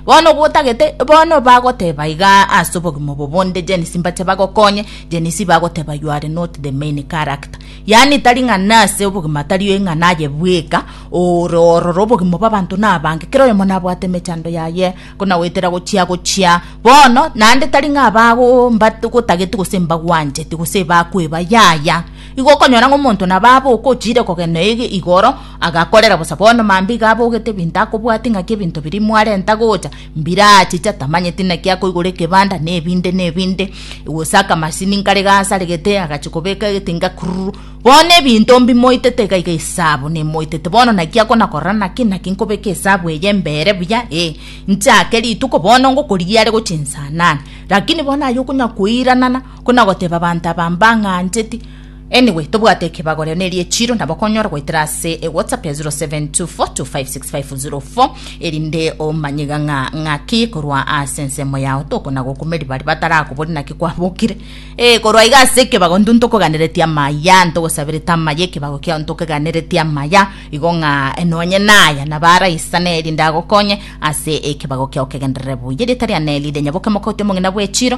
Bono obo otagete, bono bagoteba iga ase obogima obo bonde Genes mbache bagokonye, Genes bagoteba you are not the main character. Yaani tari ng'a nase obogima tari ng'a naye bweka ore ororo obogima bwa abanto na abange kera oyomo nabwate emechando yaye konagoetera gochia gochia bono naende tari ng'a abago mbat gotageti gose mbagwancheti gose bakweba yaya igo okonyora ng'a omonto nabo abe okochiire kogenda ege igoro Agakorera bosa bono mambia abogete ebinto akobwatia ng'aki ebinto biria mwarenta gocha mbiraachicha tamanyeti naki akoigora ekebanda nebinde nebinde gose akamasini nkare gasaregete agachia kobeka egetinga kururu bono ebinto mbimoitete iga iga esabu nemoitete bono naki akona korora naki naki nkobeka esabu eye mbere buya ee nchake rituko bono ngokorigia are gochia nsa nane rakini bono aye okonya koiranana kona goteba abanto aba mbang'ancheti. Anyway, tobwate ekebagorero neri echiro nabo okonyora goetera ase ewhatsapp ya 0724256004 erinde omanye iga ng'a ng'aki korwa ase ensemo yao tokona gokumeri bari batarakobori naki kwabokire ee korwa iga ase ekebago ntu ntokoganeretie amaya ntogosaberete amaya ekebago kiao ntokeganeretie amaya igo ng'a eh, nonye naya naba araisane erinde agokonye ase ekebago kiao kegenderere buya erieta ria neri rinyaboke moka ote omong'ina bw'echiro